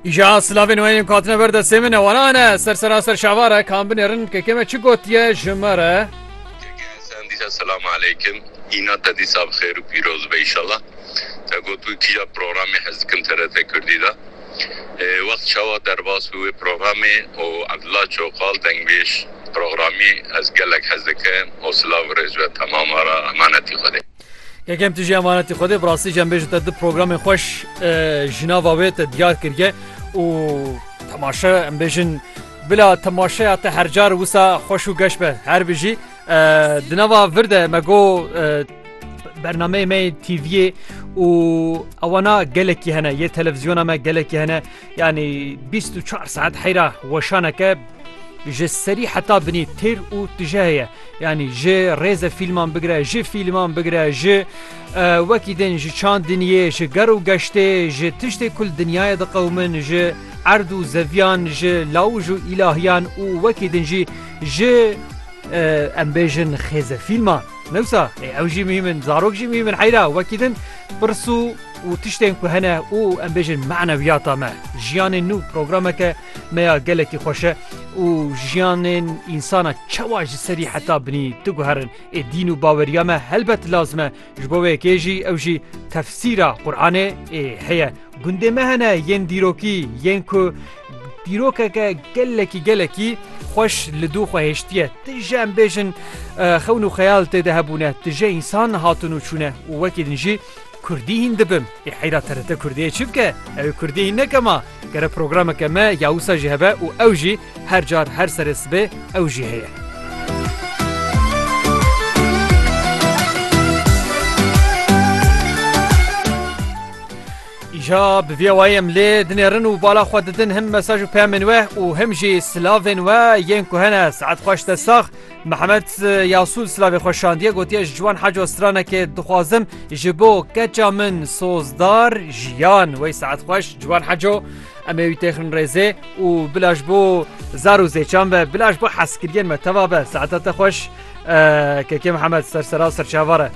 Îja silavên wê yên katine ber destê min e wanan e ser seraser şavar e kan binêrin kekê me çi gotiye ji me re Dîsa selam aleykim îna te dîsa bi xêr û pîroz be îşallah te got wî kîja programê hez dikim TRT Kurdî de wext çawa derbas bû wê programê û Abdullah Çoxal dengbêj programî ez gelek hez dikim û silav û rêz be temama re emanetî Xwedê. Kekem tu jî emanetî Xwedê bi rastî jî em bêjin te du programên xweş ji nava wê te diyar kiriye û temaşe em bêjin bila temaşeya te her car wisa xweş û geş be her bijî di nava vir de me got bernameyê me yê TVyê û ewana gelekî hene yê televîzyona me gelekî hene Yanî bîst û çar saet heyra weşaneke ji serî heta binî têr û tije heye yanî ji rêze fîlman bigire ji fîlman bigire ji wekî din ji çandiniyê ji ger û geştê ji tiştê kul dinyayê diqewmin ji erd û zeviyan ji lawij û îlahiyan û wekî din jî ji em bêjin xêze fîlman newsa ew jî mîmin zarok jî mîmin heyra wekî din pirs û û tiştên ku hene û em bêjin manewiyata me, jiyanê nû programeke me ya gelekî xweş e û jiyanên însana çawa ji serî heta binî diguherin. Ê dîn û baweriya me helbet lazim e, ji bo wê yekê jî ew jî tefsîra Quranê ê heye. Gundê me hene yên dîrokî yên ku dîrokeke gelekî gelekî xweş li dû xwe hêştiye. Ti ji em bêjin xewn û xeyal tê de hebûne, ti ji însan hatun û çûne û wekî din jî Kurdî hîn dibim. Ê heyra TRT Kurdiyê çi bike? Ew ê Kurdî hîn neke ma. Gere programeke me ya wisa jî hebe û ew jî her car her serê sibê ew jî heye. Îja bi vî wayî em lê dinêrin û bala xwe didin him mesaj û peyamên we û him jî silavên we yên ku hene saet xweş te sax. Mehmet Yasûl silavê xwe şandiye gotiye ji wan heca stranekê dixwazim ji bo keça min sozdar jiyan wey saet xweş ciwan heco em ê wî têxin rêzê û bila ji bo zar û zêçan be bila ji bo heskiriyên me teva be saeta te xweş kekê Mihemed sersera serçavare.